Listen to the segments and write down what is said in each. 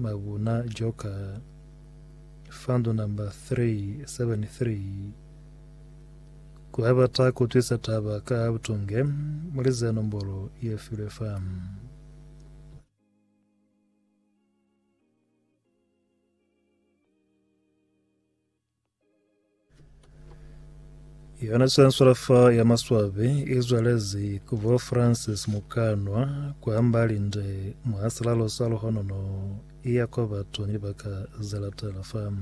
Mabuna Joka, Fund number 373, Ku abata ku twisa taba ka butunge, mulize nombolo ye filwe fa. Yona swanswala fa ya maswabi izwalezi ku bo Francis Mukanwa kwa Mbalinde mwa silalo sa luhonono iya kwa batu ni baka zelatela fa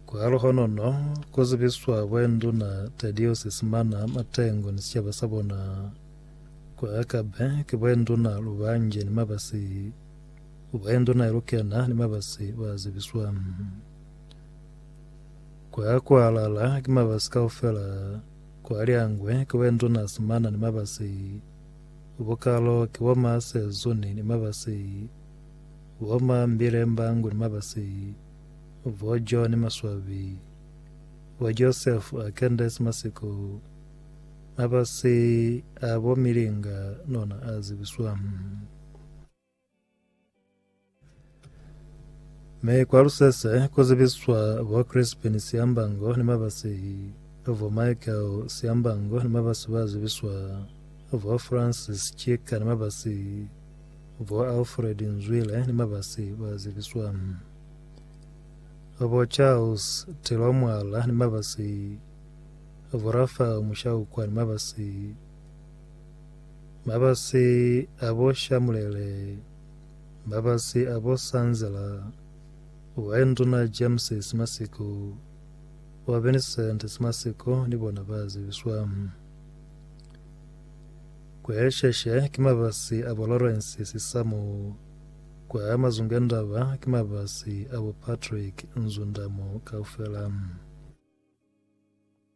kwa luhonono ku zibiswa bwenduna Tedios Simana Matengo ni sicaba sa bona kwa Akabe ki bwenduna Lubanje ni Mabasi Kuba induna ilukela na ni mabasi ba zibiswa. Kwa kualala ki mabasi kaufela kwa liangwe kuba induna simana ni mabasi. Ubukalo ki bo ma sezuni ni mabasi. Bo ma mbile mbangu ni mabasi. Bo jo ni maswabi. Bo Joseph a kendesi masiko. Mabasi a bo milinga nona a zibiswa. Me kwa lusese ku zibiswa bo Crispin Siambango ni mabasi vo Michael Siambango ni mabasi ba zibiswa vo Francis Chika ni mabasi vo Alfred Nzwile ni mabasi ba zibiswa vo Charles Tilomwala ni mabasi vo Rafael Mushaukwa ni mabasi Mabasi a bo Shamulele, mabasi a bo Sanzela, wa Induna James Simasiko, wa Vincent Simasiko ni bona ba zibiswa. Kwa Sheshe ki mabasi a bo Lawrence Sisamo, kwa Mazungendaba ki mabasi a bo Patrick Nzundamo kaufela.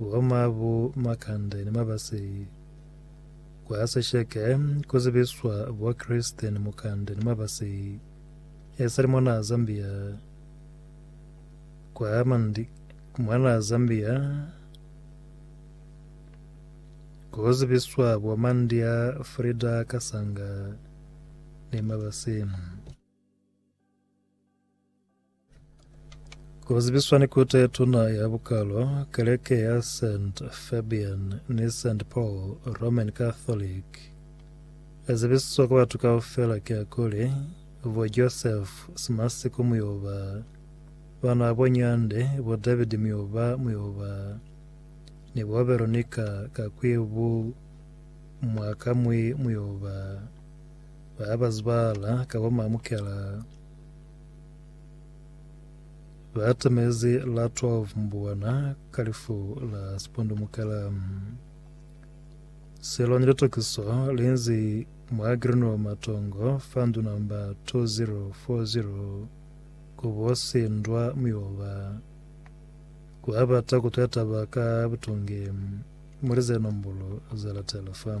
Wa mabu makande ni mabasi kwa sisheke ku zibiswa bwa Kristen mukande ni mabasi e sali mwanaa Zambia kwa mandi mwanaa Zambia ku zibiswa bwa mandi a Frida Kasanga ni mabasi. Ku zibiswa ni kuta ye tuna ya bukalo, keleke ya St. Fabian ni St. Paul Roman Catholic e zibisiswa ku batu kaufela ki ya kuli, bo Joseph Simasiku Muyoba, bana bo Nyande, bo David Muyoba Muyoba, ni bo Veronica Kakwibu Mwakamwi Muyoba, ba ba zibala ka bo Mamukela. Ba atamezi la 12 mbuwana ka lifu la sipundumukela. Selo ni litokiso linzi mwa Greenwell Matongo fa ndu namba 2040 kubo sindwa mioba. Ku abata kutwela taba ka butungi muli ze nombolo za latela fa.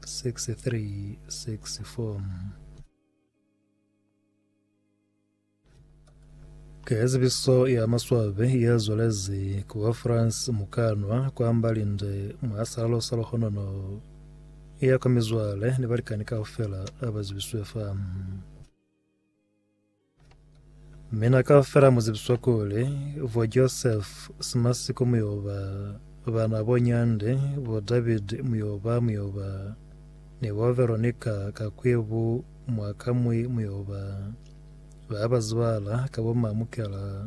6364. Ka zibiso ya maswabe ya zwalezi ku wa France mukanwa kwa mbalinde mwa salalo sa lohonono ya kwa mizwale ni balikani kaufela abazibiswe fa Mina kaufela mu zibiswa kuli, bo Joseph Simasiko mu yo ba, bana bo Nyande, bo David mu yo ba, mu yo ba, ni bo Veronica Kakwebu mwa kamwi mu yo ba. Ba ba zibala ka bo Mamukela.